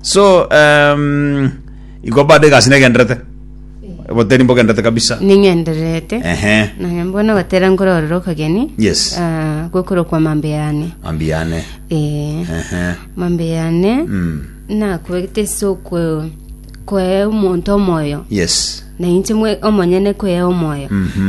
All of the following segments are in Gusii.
So um, iko bado egasi negenderete boteri mbogenderete kabisa ning'endererete ehe nonye mbona ogotera nkororera okogeni Yes. ah, gokorokwa mambe yane mambi yane Eh, ehe mambe yane Mm. nakwete ase okwe- kwee omonto omoyo yes Na inche mwe- omonyene kwea omoyo,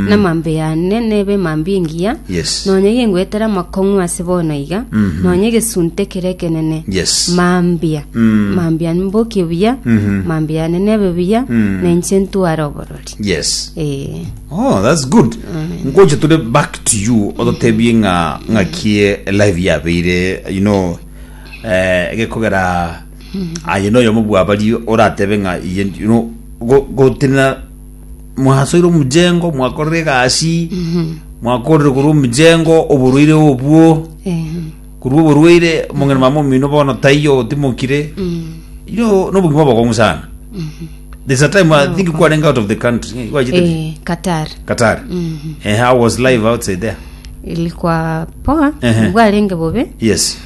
na amambia yane nebe mambia engiya, Yes. nonya yengoetera amakong'u ase bono iga, nonya egesunte kere ekenene, Yes. mambia, Mm. mambia mbokie buya, Mhm. mambia yane nebe buya, Mm. na inche ntware oborori. yes Eh, oh that's good ngocha tule back to you ototebie ng'a ng'akie live yabeire you know eh gekogera Aye noyomo bw'abaria oratebe ng'a iye ndi- no- go- gotenena mwasoire omujengo mwakorire egasi mwakorire korwa omujengo oborwaire obwo Eh, korwa oborwaire omong'ina mama omino bono taiyo otimokire iro nobogima obokong'u sana there's a time i think kwarenge out of the country eh, gwachete eh, Qatar Qatar eh, I was live outside there ilikuwa poa Ehe. bwarenge bobe yes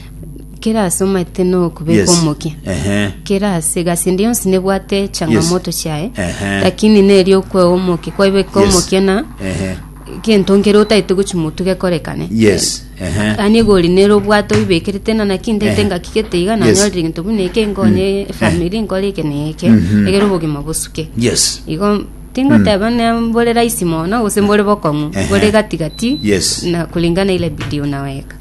Kera ase omanyete nokobeka Yes. omokia. Ehe. Kera ase egasi ende yonsi nebwate changamoto chiaye. Ehe. Lakini neri okwewa omokia. Kwabeka Yes. omokia na Ehe. gento nkere otaete gochi motu gekorekane. Yes. Ehe. Ani egori nero obwate oibekerete nana kindete Ehe. ngaki gete iga Yes. nanyorire gento buna eke nkonye family nkore eke na eke Mhm. egere obogima bosuke. Yes. Igo tingoteba ne mbore rahisi mono gose mbore bokong'u Ehe. bore gatigati Yes. na kulingana ile bidii unaweka.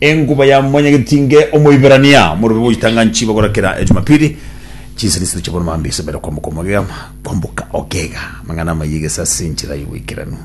Enguba ya Mwanyagetinge Omoiberania Omorwebe Goitanga Nchiba Gora Kera Ejumapili Chinsini Isano Chia Bono Mambia Isebere Kwamboka Omogega Kwamboka Ogega Amang'ana Amaya Egesasi Enchera Y'Oboikeranu